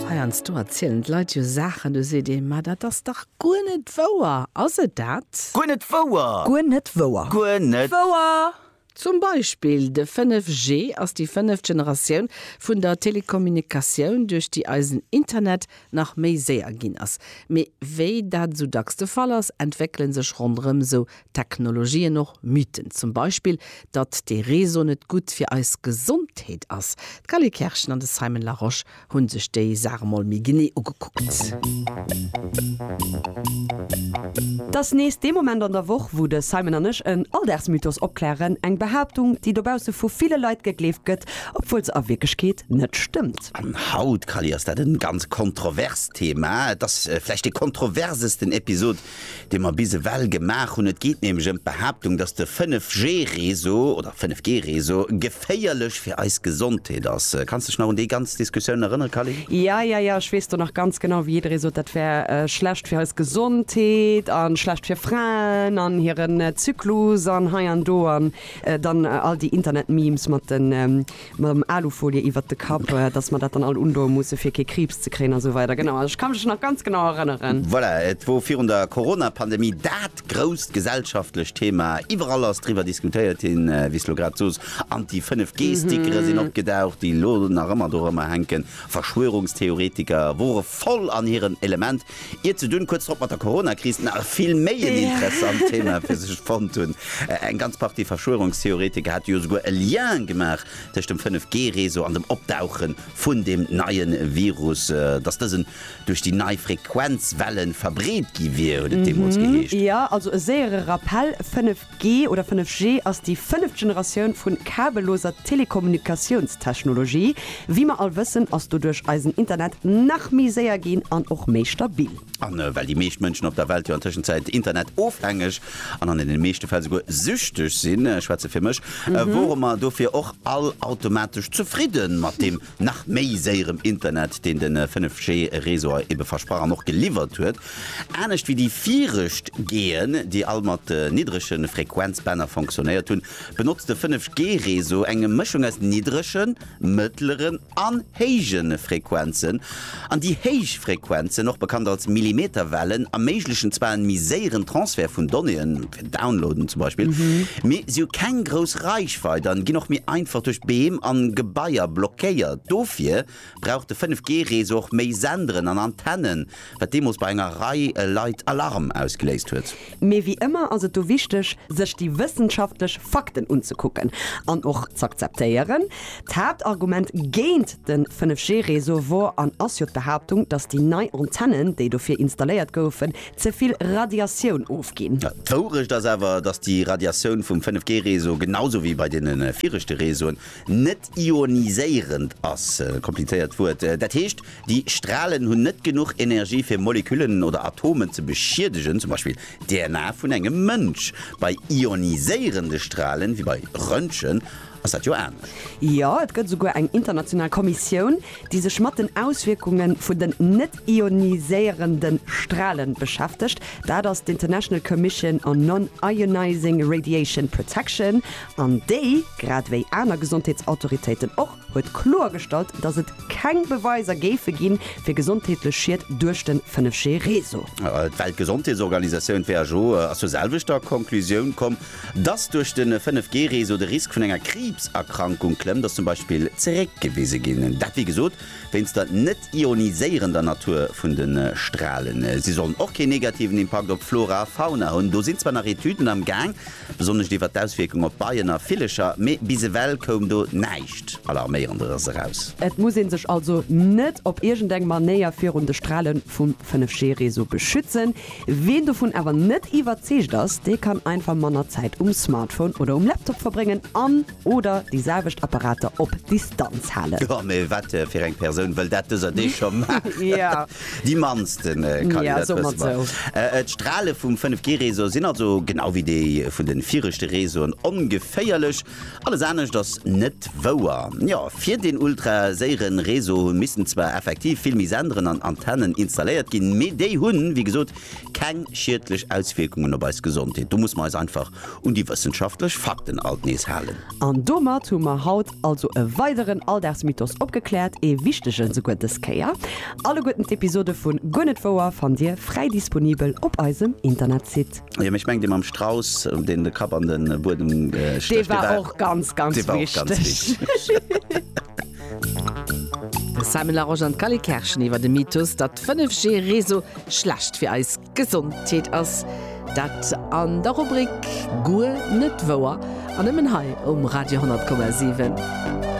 Heiansdo erzielen d'Leit jo Saachen, do seet ee, Ma dat ass dach guer net wouer! Ass et dat? Guer net wouer! Guer net wouer! Guer net wouer! Zum Beispill de 5G ass déi fënneft Generatioun vun der Telekommunikatioun, duerch déi eisen Internet nach méi séier ginn ass. Mee wéi dat esou dacks de Fall ass, entwéckele sech ronderëm esou Technologien och Mythen, zum Beispill datt dee Réseau net gutt fir eis Gesondheet ass. D'Galie Kerschen an de Simon Larosche hunn sech déi Saach emol méi genee ugekuckt. T'ass nees dee Moment an der Woch, wou de Simon an ech en Alldagsmythos opklären, eng Behaaptung, déi dobausse vu ville Leit gegleeft gëtt, obwuel se a Wierklechkeet net stëmmt. An haut, Galie, ass dat e ganz kontroverst Thema. Et ass vläicht dee kontroversesten Episod, dee mer bis ewell gemaach hunn. Et geet nämlech ëm d'Behaaptung, dass de 5G-Réseau oder 5G-Réseau geféierlech fir eis Gesondheet ass. Kanns dech nach un déi ganz Diskussioun erënnere, Calin? Ja, ja, ja, ech weess do nach ganz genau, wéi jidderee sot, dat wär schlecht fir eis Gesondheet a schlecht fir Fraen an hiren Zyklus an hei an do an dann all déi Internet-Memes mat den, Mam Alufolie iwwert de Kapp, dass mer dat dann all undoe musse fir kee Kriibs ze kréien a sou weider. Genau, ech ka mech nach ganz genau erënneren. Voilà, et wor virun der Coronapandemie dat grousst gesellschaftlecht Thema. Iwwerall ass driwwer diskutéiert hin, wéi s de elo grad soos. An déi 5G-Stickere sinn opgedaucht, déi elo nach ëmmer dorëmmer hänken. Verschwörungstheoretiker wore voll an hirem Element. Ier ze dunn, kuerz drop mat der Corona-Kris, nach e vill méi en interessant Thema fir sech fonnt hunn. Eng ganz Partie Verschwörungstheoretiker hate jo souguer e Lien gemaach tëscht dem 5G-Réseau an dem Opdauche vun deem neie Virus, dass dësen duerch déi nei Frequenzwellen verbreet gi wier, huet et deemools geheescht. Jo, also e séiere Rappell, 5G 5G oder 5G ass déi fënneft Generatioun vun kabelloser Telekommunikatiounstechnologie. Wéi mer all wëssen, ass doduerch eisen Internet nach méi séier ginn an och méi stabil. A well déi meescht Mënschen op der Welt jo an Tëschenzäit Internet-ofhängeg an an deene meeschte Fäll souguer süchteg sinn, ech schwätze fir mech, wore mer dofir och all automatesch zefridde mat deem nach méi séierem Internet, deen de 5G Réseau ebe versprach an och geliwwert huet, anescht wéi déi virecht G'en, déi all mat niddrege Frequenzbänner fonctionnéiert hunn, benotzt de 5G Réseau eng Mëschung aus niddregen, mëttleren an héije Frequenzen. An déi héich Frequenzen, och bekannt als Millimeterwellen, erméiglechen zwar en méi séieren Transfert vun Donnéeën, fir Downloaden zum Beispill, mee si hu keng grouss Reichweit an ginn och méi einfach duerch Beem an Gebaier blockéiert. Dofir brauch de 5G Réseau och méi Senderen an Antennen, wat deemools bei enger Rei Leit Alarm ausgeléist huet. Mee wéi ëmmer ass et do wichteg, sech déi wëssenschaftlech Fakten unzekucken an och z'akzeptéieren. D'Haaptargument géint de 5G-Réseau wor an ass jo d'Behaaptung, datt déi nei Antennen, déi dofir installéiert goufen, ze vill Radiatioun ofginn. D'Wourecht ass awer, datt déi Radiatioun vum 5G-Réseau, genau sou wéi bei deene viregte Réseauen, net ioniséierend ass, komplizéiert Wuert, dat heescht, Déi Stralen hunn net genuch Energie fir Moleküllen oder Atomen ze beschiedegen, zum Beispill d'DNA vun engem Mënsch. Bei ioniséierende Stralen, wéi bei Röntgen, ass dat jo anescht. Jo, et gëtt esouguer eng international Kommissioun, déi sech mat den Auswierkunge vun den net-ioniséierende Strale beschäftegt. Dat ass d'International Commission on Non-Ionizing Radiation Protection, an déi, grad ewéi aner Gesondheetsautoritéiten och, huet kloergestallt, datt et keng Beweiser géife ginn, fir gesondheetlech Schied duerch de 5G-Réseau. D'Weltgesondheetsorganisatioun, who, ass zur selwechter Conclusioun komm, datt duerch de 5G-Réseau de Risk vun enger Kriibserkrankung klëmmt, ass zum Beispill zeréckgewise ginn. Dat, wéi gesot, wéinst der net-ioniséierender Natur vun de Stralen. Si sollen och keen negativen Impakt op d'Flora a Fauna hunn. Do sinn zwar nach Etüden am Gaang, Attack, besonnesch iwwer d'Auswierkung op Beien a Villecher, mee bis ewell koum do näischt Alarméierenderes eraus. Et muss ee sech also net op iergend eng Manéier virun de Strale vum 5G-Réseau beschützen. Ween dovun awer net iwwerzeegt ass, dee kann einfach manner Zäit um Smartphone oder um Laptop verbréngen an, Oder déi selwecht Apparater op Distanz halen. Jo, mee wat fir eng Persoun wëll dat dëser Deeg scho maachen? Déi mannsten, Kally, dat wësse mer. D'Strale vum 5G-Réseau sinn also, genau wéi déi vun de viregte Réseauen, ongeféierlech. Alles anescht ass net wouer. Jo, fir deen ultraséiere Réseau missten zwar effektiv vill méi Senderen an Antennen installéiert ginn, mee déi hunn, wéi gesot, keng schiedlech Auswierkungen op eis Gesondheet. Do musse mer eis einfach Un déi wëssenschaftlech Fakten alt nees halen. An domat hu mer haut also e weideren Alldagsmythos opgekläert, ee wichtegen esouguer dës Kéier. Alleguerten d'Episode vun Guer net wouer fannt Dir fräi disponibel op eisem Internetsite. Jo, mee ech mengen dee mam Strauss, deen de Kapp an de Buedem stécht, dee war. Dee war och ganz, ganz wichteg. De Simon Larosche an d'Cally Kerschen iwwer de Mythos, datt 5G-Réseau schlecht fir eis. Gesondheet ass dat an der Rubrik Guer net wouer an nëmmen hei um Radio 10,7.